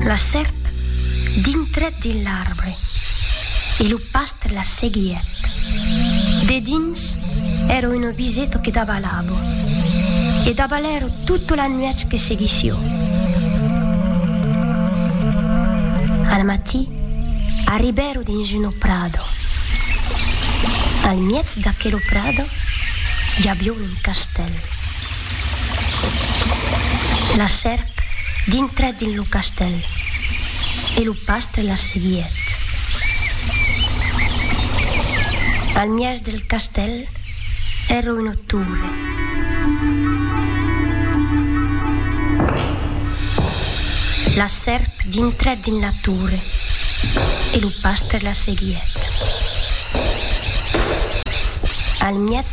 La sèrp dintrèt dins l'arbre e lo pastre la seguièt. Dedins èra un obiseto que davalavo e davalèro tota la nuèch que seguissió. Al matí arribèro dins uno prado. Al miètz d'aquelo prado i avió un castèl. La sèrp dintrèt dins lo castèl e lo pastre la seguièt. Al mièg del castèl èra una torre. La sèrp dintrèt dins la torre e lo pastre la seguièt. Al mièg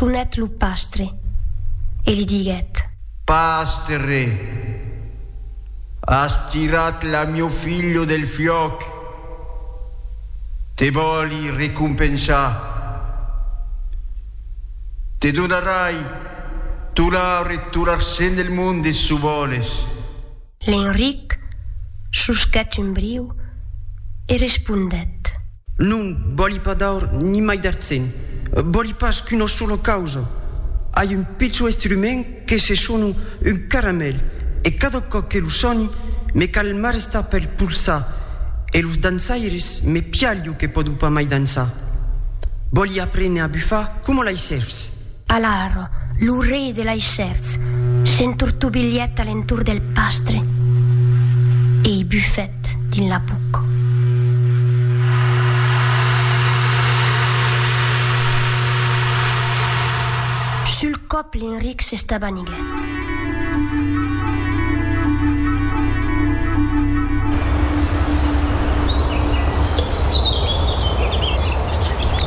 Sonèt lo pastre e li diguèt. Pastre, as tirat la mieu filho del fiòc, te vòli recompensar. Te donarai tolar e tolarcent del monde, çò vòles. L'Enric susquèt un briu e respondèt. Non vòli pas d'aur ni mai d'artzen, vòli pas qu'una sola causa. Ai un pichon estrument que se sona un caramèl e cada còp que lo soni me cal m'arrestar pel polsar e los dançaires me pialho que pòdo pas mai dançar. Vòli aprene a bufar coma lei sèrps. Alar, lo rei de lei sèrps s'entortobilhèt a l'entorn del pastre e i bufèt dins la buc. Sul còp l'Enric s'estabaniguèt.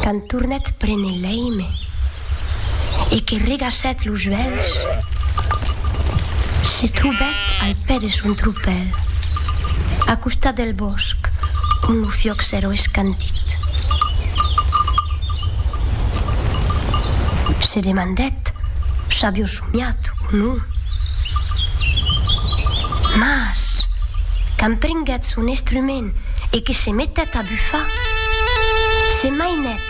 Quand tornèt prene l'èime. e que regassèt los uèlhs, se trobèt al pè de son tropèl, a costat del bòsc ont lo fiòc s'èra escantit. Se demandèt s'avió somiat o non. Mas, quand prenguèt son estrument e que se metèt a bufar, se mainèt